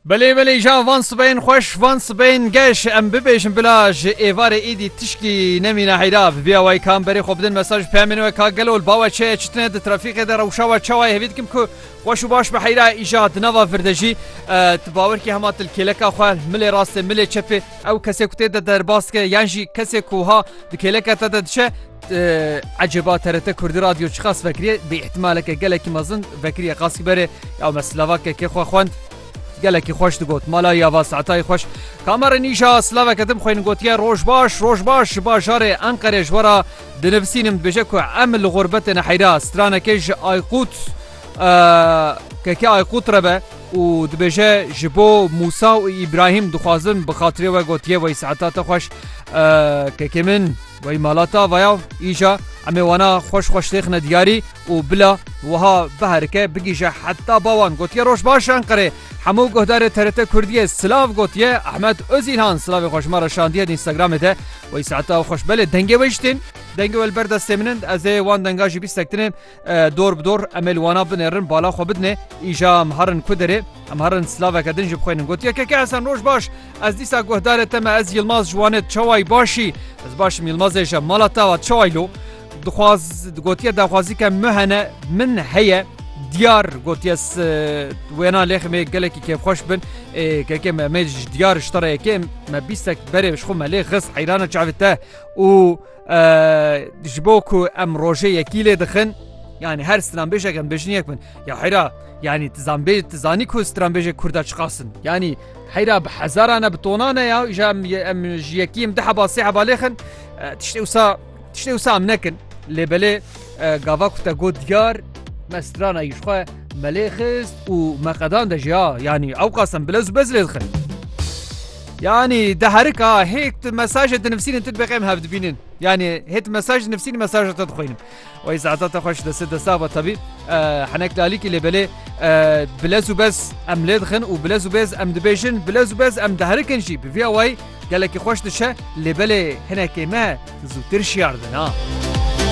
Belê belê ja van sibeyên xweş van sibeyên geş em bibêjin bila ji êvarê êdî tişkî nemîne heyra bi bîya wayî ka em berê xwe bidin mesaj peyamên we ka gelo li bawe çeye çitine di trafîqê de rewşa we çawa hevî dikim ku xweş û baş bi heyra îja di nava vir de jî tu bawer kî hema til kêleka xwe milê rastê milê çepê ew kesê ku tê de derbas dike yan jî kesê ku ha di kêleka te de diçe Ecêba TRT Kurdî Radyo çiqas vekiriye bi îhtimaleke gelekî mezin vekiriye qasî berê ya me silavakekê xwe xwend gelekî xweş digot mala ya va saetayê xweş kamerê nîja silaveke dim xwên gotiye roj baş roj baş ji bajarê Enqerê ji wera dinivisînim dibêje ku em li xûrbetê neheyra stranekê ji Aykut keke Aykut re be û dibêje ji bo Musa û Îbrahîm dixwazim bi xatirê we gotiye wey saeta te xweş kekê min Wey mala ta vaya îja em ê wana xweş xweş têxine diyarî û bila wiha biherike bigîje heta bawan gotiye roj baş Enqerê hemû guhdarê TRT Kurdiyê silav gotiye Ahmet Ozîlhan silavê xwe ji me re şandiye di Instagramê de wey saeta xweş belê dengê wê jî tên dengê we li ber destê min in ez ê wan denga jî bîstektinê Dor bi dor em ê li wana binêrin bala xwe bidinê. Îja em herin ku derê em herin silaveke din jî bixwînin. Got yekeke Hesen roj baş ez dîsa guhdarê te me ez Yilmaz ji Wanê çawayî başî ez başim Yilmazê ji mala te va çawayî lo dixwaz gotiye daxwazîke min hene min heye diyar gotiye wêna lêxê me gelekî kêfxweş bin kekê me me ji diyar ji te re yekê me bîstek berê ji xwe me lê xist heyrana çavê te û ji bo ku em rojê yekî lê dixin yanî her stranbêjek em bêjin yek bin ya heyra yanî tizanbê tizanî ku stranbêjê Kurda çiqasin yanî heyra bi hezaran e bi tonan e ya ji em em ji yekî em di heba sê heba lêxin tiştê wisa tiştê wisa em nekin lê belê gava ku te got diyar me strana yîxwe me lê xist û me qedan de ji ya yanî ew qasem bilez bez lê dixin. Yanî di herika hê tu mesajê dinivîsînî tu dibêqem hev dibînin. Yanî hê tu mesaj dinivîsînî mesaja te dixwînim. Wey zeheta te xweş destê desta va tabî henek lalîkî lê belê bilez û bez em lê dixin û bilez û bêz em dibêjin bilez û bez em diherikin jî bi vî awayî gelekî xweş dişe lê belê hinekê me zûtir şiyar dina.